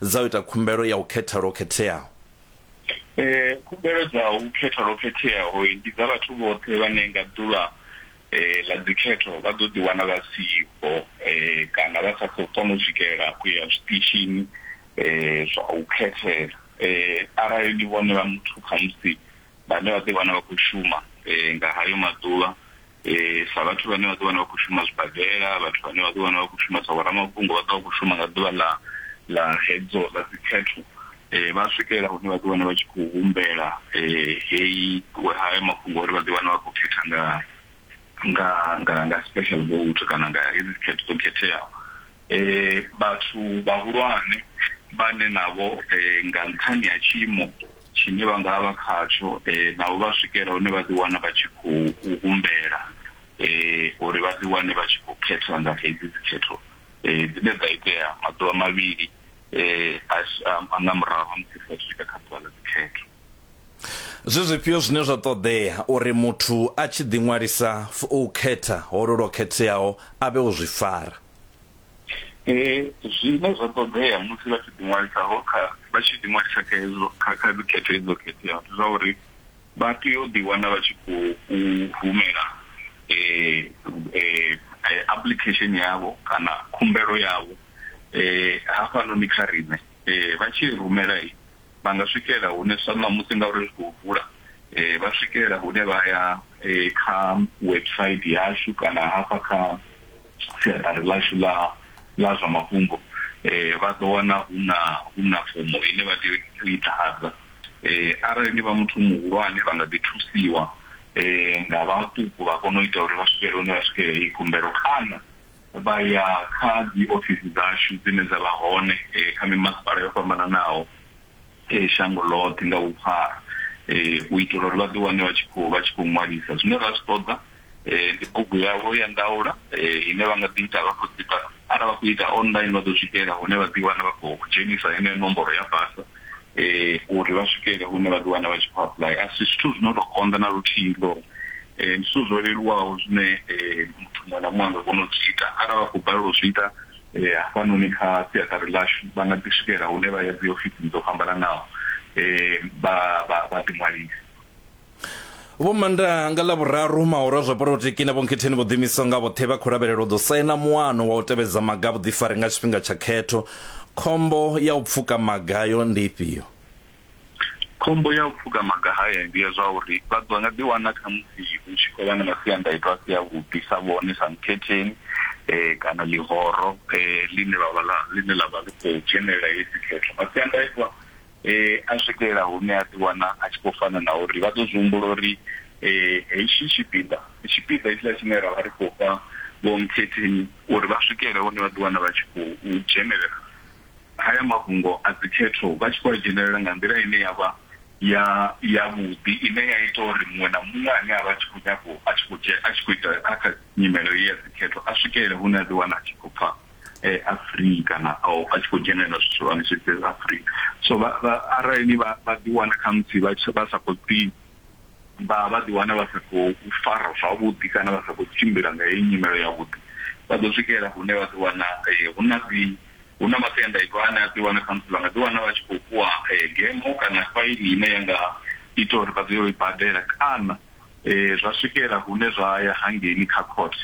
Dza u ita khumbelo ya u khetha lwo khetheaho. Khumbelo dza u khetha lwo khetheaho ndi dza vhathu vhoṱhe vhane nga ḓuvha ḽa dzikhetho vha ḓo ḓiwana vha siho kana vha sa khou kona u swikelela u ya zwiṱitshini zwa u khethela. Arali ndi vhone vha muthu khamusi vhane vha ḓiwana vha khou shuma nga hayo maḓuvha. eh, sa vhathu vhane vha ḓi wana vha khou shuma zwibadela vhathu vhane vha ḓi wana vha khou shuma sa vhoramafhungo vha ḓo vha khou shuma nga ḓuvha ḽa ḽa hedzo ḽa dzikhetho um vha swikelela hune vha ḓi wana vha tshi khou humbela um heyi haya mafhungo uri vha ḓi wana vha khou khetha nga nga nga nga special vote kana nga hedzi dzikhetho dzo khetheaho Vhathu vhahulwane vhane navho nga nṱhani ha tshiimo tshine vha nga vha vha khatsho navho vha swikela hune vha ḓi wana vha tshi khou humbela uri vha ḓi wane vha tshi khou khetha nga hedzi dzi khetho dzine dza itea maḓuvha mavhili nga murahu ha musi ri sathu swika kha ḓuvha ḽa dzi khetho. Zwi zwifhio zwine zwa ṱoḓea uri muthu a tshi ḓi ṅwalisa u khetha holwo lwo khetheaho a vhe o zwi fara? eh, zwine zwa ṱoḓea musi vha tshi ḓiṅwalisaho kha vha tshi ḓiṅwalisa kha hezwo kha kha dzikhetho hedzo khetheaho ndi zwa uri vha tea u ḓiwana vha tshi khou humela eh, eh, eh, application yavho kana khumbelo yavho eh, hafhanoni kha riṋe eh, vha tshi rumela i vha nga swikela hune sa ṋamusi ngauri zwi khou vula eh, vha swikela hune vha ya eh, kha website yashu kana hafha kha siaṱari ḽashu ḽa ḽa zwa mafhungo um vha ḓo wana hu na hu na fomo ine vha tea u i ḓadza um arali ni vha muthu muhulwane vha nga ḓi thusiwa um nga vhaṱuku vha kona u ita uri vha swikele hune vha swikela heyi khumbelo kana vha ya kha dzi ofisi dzashu dzine dza vha hone um kha mimasipala yo fhambananaho shango ḽoṱhe nga vhuphara u itela uri vha ḓi wane vha tshi khou vha tshi khou ṅwalisa. Zwine ra zwi ṱoḓa ndi bugu yavho ya ndaula ine vha nga ḓi ita vha khou ita arali vha khou ita online vha ḓo swikelela hune vha ḓi wana vha khou dzhenisa heneyo nomboro ya basa uri vha swikele hune vha ḓi wana vha tshi khou apply. A si zwithu zwi no to konḓa na luthihi ndi zwithu zwo leluwaho zwine muthu muṅwe na muṅwe a nga kona u zwi ita arali vha khou balelwa u zwi ita E, hafhanoni kha siaṱari ḽashu vha nga ḓi swikela hune vha ya dziofisini dzo fhambananaho e, vha vha vha ḓiṅwalisa. Vho Manda nga Ḽavhuraru mahoru a zwa polotiki na Vho Nkhetheni vho ḓiimisaho nga vhoṱhe vha khou lavhelelwa u ḓo saina muano wa u tevhedza maga a vhuḓifari nga tshifhinga tsha khetho. Khombo ya u pfuka maga ayo ndi ifhio? Khombo ya u pfuka maga haya ndi ya zwa uri vha ḓo nga ḓiwana khamusi hu tshi khou vha na masiandaitwa a si avhuḓi sa vhone sa mukhetheni um kana ḽihoro um ḽine vhavha ḽa ḽine ḽa vha ḽi khou dzhenelela heyi dzikhetho masiandaitwa um a swikelela hune a ḓiwana a tshi khou fana na uri vha ḓo zwi humbula uri um hetshi tshipiḓa tshipiḓa hetshiḽa tshine ra vha ri khou fha vho mukhetheni uri vha swikele hune vha ḓiwana vha tshi khou dzhenelela haya mafhungo a dzikhetho vha tshi khou a dzhenelela nga nḓila ine ya vha ya yavhuḓi ine ya ita uri muṅwe na muṅwe ane a vha tshi khou nyago a tshi khou dzhia a tshi khou ita kha kha nyimelo ya dzikhetho a swikelele hune a ḓi wana a tshi khou pfha eh, a free kana a tshi khou dzhenelela zwithu zwihulwane zwi ḓe a free so arali vha vha ḓi wana kha musi vha vha sa khou ḓi vha vha ḓi wana vha sa khou fara zwavhuḓi kana vha sa khou tshimbila nga heyi nyimelo yavhuḓi vha ḓo swikelela hune vha ḓi wana eh, hu na dzi Hu na masiandaitwa ane a ḓiwana khamusi vha nga ḓiwana vha tshi khou fhiwa gemo kana faini ine ya nga ita uri vha tea u i badela kana zwa swikela hune zwa ya hangeini kha court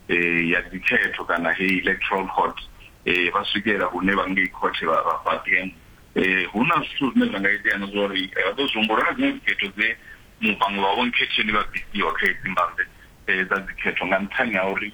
ya dzikhetho kana heyi electoral court vha swikela hune vha ngei court vha vha fha gemo. Hu na zwithu zwine zwa nga itea na zwa uri vha ḓo zwi humbula na dziṅwe dzikhetho dze vhaṅwe vha vho nkhetheni vha bvisiwa kha hedzi mbambe dza dzikhetho nga nṱhani ha uri